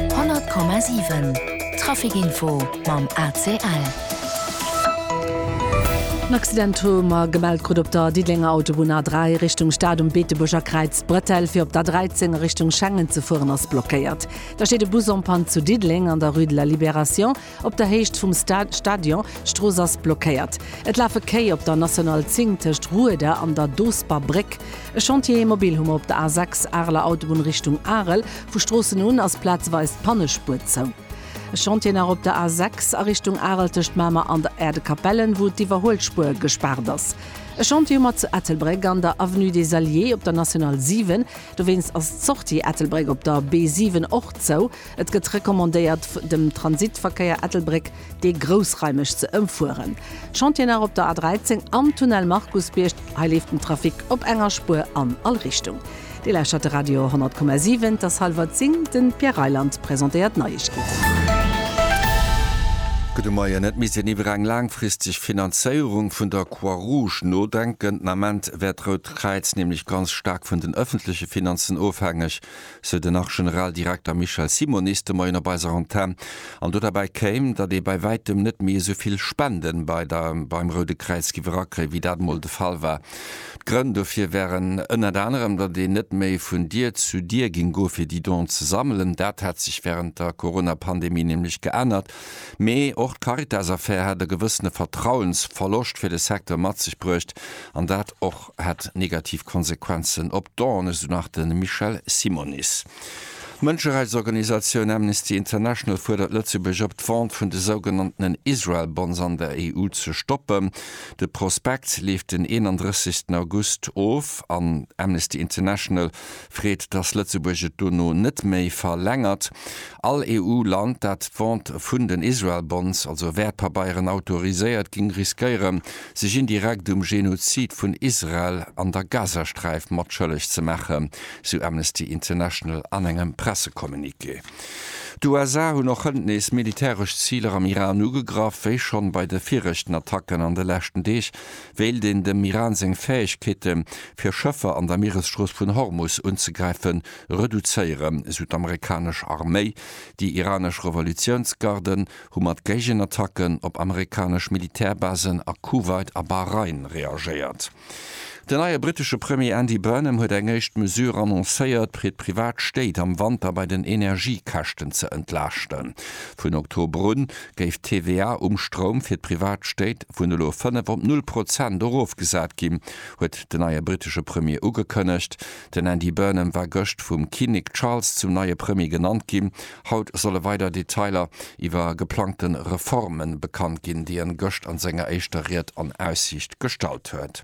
100,7 Traficinfo mam ACL. En Accident hu mer gemellt krut op der Diddelenger Autobunn A3 Richtung Stad um Beetebuerger Kräiz. D'Bretelle fir op d'A13 a Richtung Schengen ze fueren ass blockéiert. Da steet e Bus en panne zu Diddeleng an der Rue de la Libération. Op der Héicht vum Stadion, d'Strooss ass blockéiert. Et lafe Kéi op der National 10 tëscht Rueda an der Doosber Bréck. E Chantier immobil hu mer op der A6, Areler Autobunn Richtung Arel. Vu Stroossen un ass plazeweis d'Pannespuer zou. E Chantier nach op der A6 a Richtung Arel tëscht Mamer an der Erdekapellen, wou d'Iwwerhuelspuer gespaart ass. E Chantier hu mer zu Ettelbréck an der Avenue des Alliés op der National 7. Dowéinst ass d'Sortie Ettelbréck op der B7 och zou. Et gëtt recommandéiert dem Transitverkéier Ettelbréck dee groussraimeg ze ëmfueren. Chantier nach op der A13 am Tunnel Markusbierg, hei leeft den Trafic op enger Spuer an all Richtung. Dir lauschtert de Radio 10,7, et ass hallwer 10, de Pierre Reyland presentéiert d'Neiegkeeten. Gudde Moien. Et misst een iwwer eng laangfristeg Finanzéierung vun der Croix Rouge nodenken. Den Ament wär d'Rout Kräiz nämlech ganz staark vun den ëffentleche Finanzen ofhängeg. sou den Nach-Generaldirekter Michel Simonis de Moien op eiser Antenn. An do derbäi kéim, datt ee bei wäitem net méi esou vill Spende bei der beim Roude Kräiz giff erakréien, wéi dat emol de Fall war. D'Grënn dofir wären ënnert anerem, datt een net méi vun Dier zu Dier géing goe fir déi Donen ze sammelen, dat hätt sech wärend der Corona-Pandemie nämlech geännert, mee och d'Caritas-Affär hätt e gewëssene Vertrauensverloscht fir de Secteur mat sech bruecht, an dat och. hätt negativ Konsequenzen op d'Dawn, esou nach de Michel Simonis. D'Mënscherechtsorganisatioun Amnesty International fuerdert Lëtzebuerg op, d'Vente vun de sougenanntenen Israel Bonds an der EU ze stoppen. De Prospekt leeft den 31 August of an Amnesty International Freet, datt Lëtzebuerg et dono net méi verlängert. All EU-Land, dat d'Vente vun den Israel Bonds, also Wäertpabeieren, autoriséiert, géing riskéieren, sech indirekt um Genozid vun Israel an der Gazasträif matschëlleg ze maachen, sou Amnesty International an engem Pressecommuniqué. D'USA hunn och hënt nees militäresch Ziler am Iran ugegraff, wéi schonn bei de viregten Attacken an de leschten Deeg, Wéilt een dem Iran seng Fäegkeete fir Schëffer an der Mieresstrooss vun Hormus unzegräife reduzéieren, esou d'amerikanesch Arméi. Déi iranesch Revolutiounsgarden hu mat Géigenattacken op amerikanesch Militärbasen a Kuwait a Bahrain reagéiert. Den neie brittesche Premier Andy Burnham huet eng éischt Mesure annoncéiert, fir d'privat Stéit am Wanter bei den Energiekäschten ze entlaaschten. Vun Oktober un géif d'TVA um Stroum fir d'privat Stéit vun elo 5 op null Prozent erofgesat ginn, huet den neie brittesche Premier ugekënnegt. Den Andy Burnham war gëscht vum Kinnek Charles zum neie Premier genannt ginn. Haut solle weider Detailer iwwer geplangte Reforme bekannt ginn, déi en gëscht an senger éischter Ried an Aussiicht gestallt huet.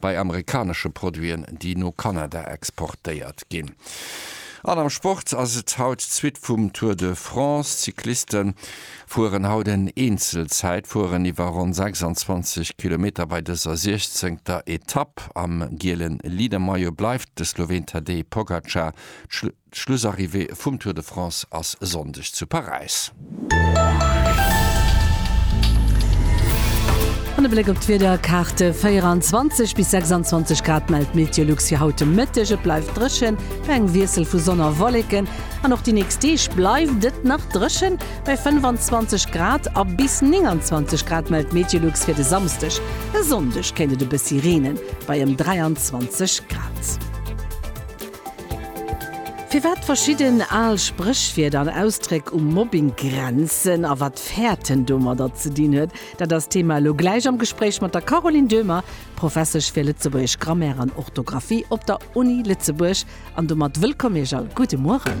bei amerikanesche Produiten, déi no Kanada exportéiert ginn. An am Sport ass et haut d'Suite vum Tour de France. D'Cycliste fueren haut en Eenzelzäitfueren iwwer ronn 26 Kilometer bei dëser 16. Etapp. Am giele Leadermaillot bleift de Sloween Tadej Pogacar. D'Schlussarrivée vum Tour de France ass e Sonndeg zu Paräis. An e Bléck op d'Wiederkaarte, 24 bis 26 Grad mellt d'Meteolux fir haut de Mëtteg. Et bleift dréchen, bei engem Wiessel vu Sonn a Wolleken. An och déi nächst Deeg bleift et nach dréchen, bei 25 Grad a bis 29 Grad mellt d'Meteolux fir de Samsdeg. E Sonndeg kéint et e bëssi reenen, bei ëm 23 Grad. Firwat verschidden al Spréchwierder an Ausdréck um Mobbing grenzen a wat Fäerten domadder ze dinn huet, dat ass d'Thema elo gläich am Gespréich mat der Caroline Döhmer, Professesch fir lëtzebuergesch Grammaire an Orthografie op der Uni Lëtzebuerg. An domat wëllkomm Iech a gudde Mueren.